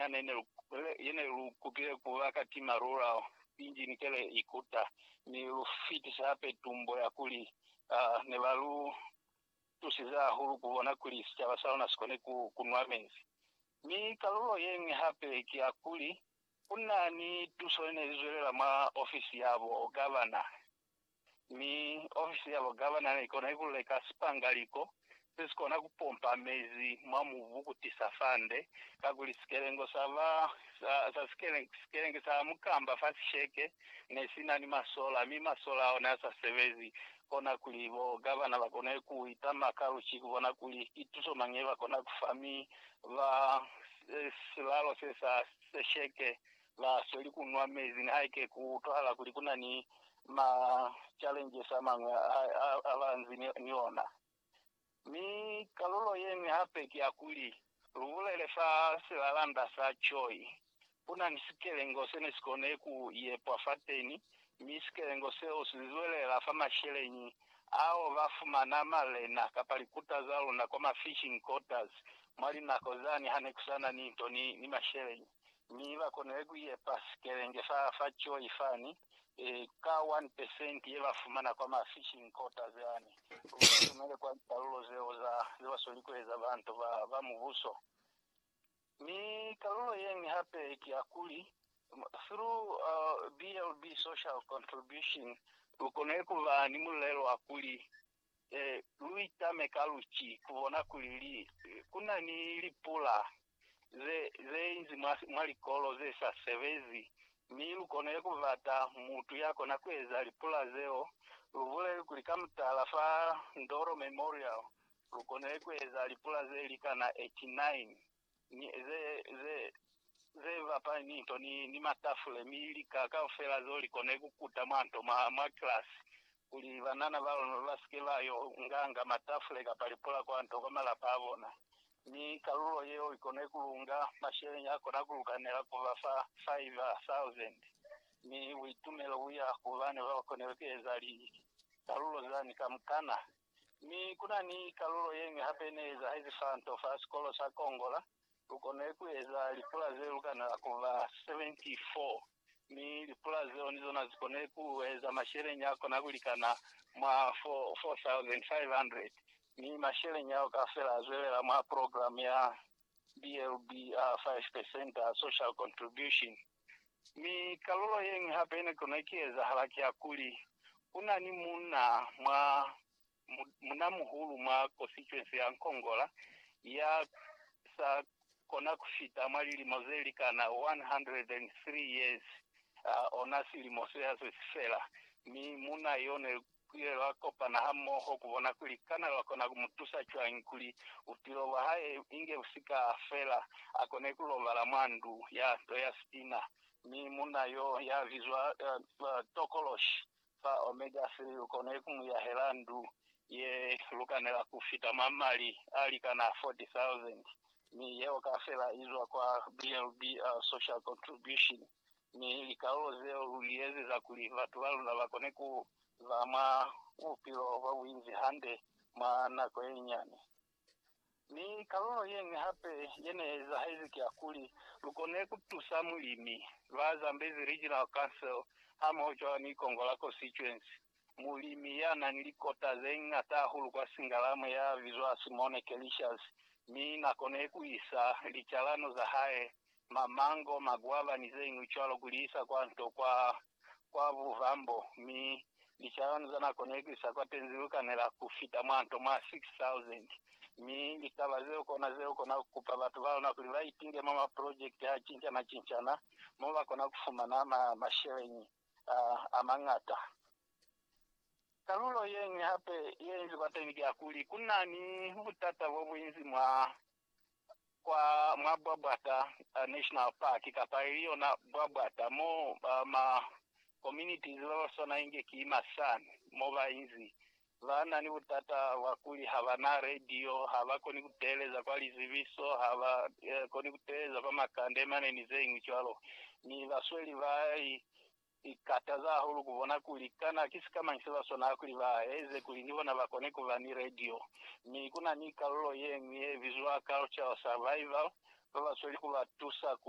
yana ine lu, yene lu kutile ku ba kati malula injini kele ikuta, mi lu fitisa hape tumbo ya kuli uh, ne ba lu tusize hahulu ku bona kuli sicaba sa luna si kone ku, ku nwa mezi. Mi kalulo ye ñwi hape ki ya kuli ku na ni tuso ye ne i zwelela mwa ofisi ya bo gavana. mi ofisi ya bo gavana ne i kona ikululeka sipangaliko se si kona ku pompa mezi mwa mubu ku tisa fande, kakuli sikelengo sa ba sa, sa sikelenge, sikelenge sa mukamba fa sisheke ne si na ni masola, mi masola ao ne a sa sebezi, kona kuli bo gavana ba kone ku itama ka luci ku bona kuli ki tuso mañi ye ba kona ku fa, mi ba, silalo se sa sesheke la sweli ku nwa mezi nihaike ku utwahala kuli ku na ni ma challenges a mañwi a a ba nzi ni ona. Mi kalulo ye ñwi hape ki ya kuli, lu bulele fa silalanda sa Choi, ku na ni sikelengo se ne si kone ku yepwa fateni, mi sikelengo seo si zwelela fa masheleñi ao ba fumana malena kapa likuta za luna kwa ma fishing quarters mwa linako zani ha ne ku sa na ni nto ni, ni masheleñi. mi ba konile ku yepa sikelenge sa fa Joy fani, ka one percent ye ba fumana kwa ma fishing quotas yani, ku ba lumele kwa likalulo zeo za ze ba sweli ku eza bantu ba, ba Mubuso. Mi kalulo ye ñwi hape ki ya kuli, through BLB social contribution, lu konile ku ba ni mulelo wa kuli lu itame ka luci ku bona kuli li ku na ni lipula ze ze inzi mwa mwa likolo ze sa sebezi, mi lu kone ku bata mutu ya kona ku eza lipula zeo. Lu buleli kuli ka mutala fa Ndoro Memorial lu kone ku eza lipula ze likana 89. ni, ze, ze, ze bapali ni nto, ni, ni matafule, mi lika kaufela zeo likone kukuta mwa nto, mwa, mwa kilasi, kuli banana ba lona basike ba yo nga, nga matafule kapa lipula kwa nto, kwa malapa a bona. Mi kalulo yeo ikone kulunga, masheleñi akona kulukanela kuba fa, faiva sauzende. Mi buitumelo buya ku bana babakonile kueza li, kalulo zani kamukana. Mi ku na ni kalulo ye ñwi hape ne ezahezi fa nto fa sikolo sa Kongola. Lu konile ku eza lipula ze lukanela ku ba 74, mi lipula zeo ni zona zi konile ku eza masheleñi a kona ku likana mwa 4,500, mi masheleñi ao kaufela a zwelela mwa program ya BLB a 5 percent a social contribution. Mi kalulo yeñwi hape yene kona kiezahala kiakuli, kuna ni muna mwa munamuhulu mwa kosituensi ya Nkongola ya sa kona kufita mwa lilimo zelikana 103 years, ona silimo sehaswe sifela, mi muna yo ne Ku ile lwa kopana hamoho ku bona kuli kana lwa kona ku mu tusa cwañi kuli bupilo bwa hae inge bu si ka fela. A kone ku lobala mwa ndu ya nto ya sitina, mi munna y'o ya bizwa tokoloshi fa Omega Three u kone ku mu yahela ndu ye lukanela ku fita mwa mali a likana 40,000, mi yeo kafela i zwa kwa BLB Social Contribution Mi likalulo zeo lu li ezeza kuli batu ba luna ba kone ku ba mwa bupilo bwa buinzi hande mwa nako ye nyane. Mi kalulo ye ñwi hape ye ne ezahezi ki ya kuli, lu kone ku tusa mulimi, ba Zambezi Regional Council hamoho cwalo ni Kongola Constituency, mulimi ya na ni likota ze ñata hahulu kwa Singalamu ya bizwa Simone Kelicious, mi na kone ku isa licalano za hae mamango, makwaba, ni zeñwi cwalo kuli isa kwa nto kwa, kwa buvambo, mi licalano za nako ne ku isa kwa tenzi lu kanela ku fita mwa nto mwa 6,000. Mi litaba zeo kona ze lu kona ku kupa batu ba luna kuli ba itinge mwa maprojekiti a cincana-cincana mo ba kona ku fumana ma, masheleñi a, a mañata. Kalulo yeñwi hape ye inzi kwateni ki ya kuli, ku na ni butata bo bunzi mwa kwa mwa Bwabwata National Park kapa ili yona Bwabwata mo ma communities ba ba swana inge ki ma San mo ba inzi ba na ni butata bwa kuli ha ba na radio, ha ba koni ku teeleza kwa lizibiso, ha ba koni ku teeleza kwa makande mane ni ze ñwi cwalo. Mi basweli ba i Ki kataza hahulu ku bona kuli kana ki sikamañi se ba swanela kuli ba eze kuli ni bona ba kone ku ba ni radio. Mi ku na ni kalulo ye ñwi ye bizwa Cultural Survival, ba ba sweli ku ba tusa ku